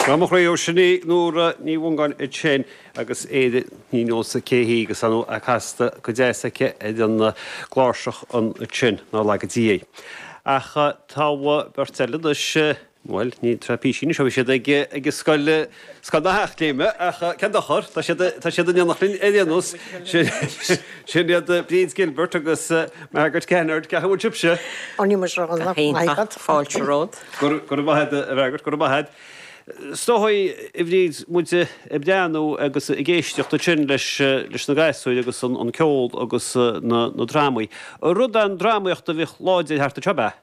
Tá mo chroí ó sin í Nóra Ní Mhongáin ansin agus Ar Éirinn ní neosfainn cé hí agus an dá cheann casta go deas aici ar an gcláirseach ansin, nár laga Dia í. Ach tá beirt eile anois, bhuel, ní tráth píosaí anois, ó bhí siad ag an scoil. Scoil na hEachléime, ach cén dochar, tá siad, tá siad in éineacht linn ar aon nós. Sin iad Bríd Gilbert agus Margaret Kennard, ceapaim, an sibhse? Tá, fáilte romhat. Go raibh maith agat, a Mhargaret, go raibh maith agat. Is dóigh, a Bhríd, muid ag breathnú agus ag éisteacht ansin leis na gasúir agus an ceol agus na drámaí. Rud an-drámaíochta a bhíodh láidir thart anseo, ab ea?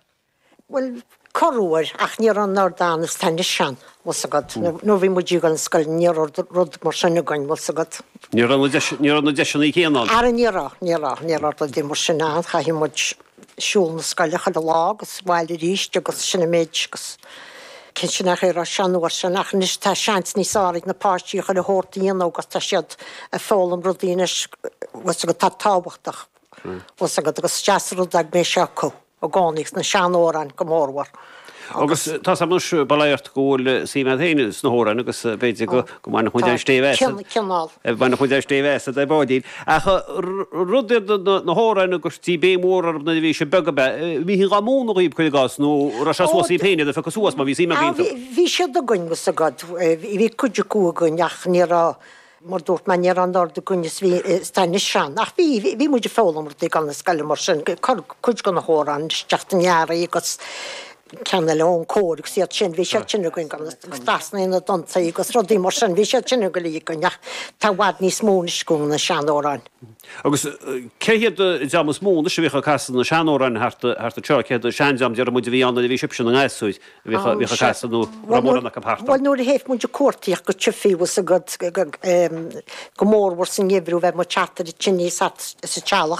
Bhuel, corruair, ach ní raibh an oiread ann is atá anois ann, bhfuil 's agat, nuair bhí muid ag dul ag an scoil ní raibh rud mar sin againn, bhfuil 's agat. Ní raibh na deis, ní raibh na deiseanna céanna ann. Ara ní raibh, ní raibh, ní raibh rudaí mar sin ann, chaitheadh muid siúl na scoile chuile lá agus abhaile arís agus sin an méid agus sin an chaoi a raibh sé an uair sin ach anois tá seans níos fearr ag na páistí chuile shórt a dhéanamh agus tá siad ag foghlaim rudaí anois, bhfuil 's agat, atá tábhachtach, bhfuil 's agat, agus is deas an rud é go mbeidh sé acu. i gcónaí sna seanamhráin go mórmhór agus. Tá 's a'm anois, bail ó Dhia ort, go bhfuil suim a'd féin sna hamhráin agus b'fhéidir go mbainfeadh muid aon stéibh as, bhainfeadh muid aon stéibh asad ar ball. Ach rud iad na hamhráin a gcuirtí béim mhór orthu nuair a bhí sibh beag ab ea? Bhídís dhá múnadh dhaoib cuir i gcás nó raibh sé suas daoib féin iad a phiocadh suas má bhí suim a'd iontu? Bhí siad againn, bhfuil 's a'd. Bhí cuid acu againn ach ní raibh, mar dúirt mé ní raibh an oiread againn is atá anois ann ach bhí, bhí muid ag foghlaim rudaí ag an scoil mar sin, cuid de na hamhráin isteach den ghearraí agus ceann eile ón gcóir agus iad sin, bhí siad sin againn agus na dánta agus rudaí mar sin, bhí siad sin uilig againn ach tá i bhfad níos mó anois acu, na sean-amhráin. Agus cé hiad an dream is mó anois a bhíodh ag casadh na sean-amhráin thart anseo, cé hiad an seandream, déarfaidh muid, a bhí ann nuair a bhí sibhse in bhur ngasúir? Bhíodh á gcasadh nó raibh mórán acu thart ann. Bhuel nuair a théadh muid ag cuartaíocht go tithe, bhfuil 's a'd, go mór mhór sa ngeimhreadh bheadh muid thart ar an tine sa teallach.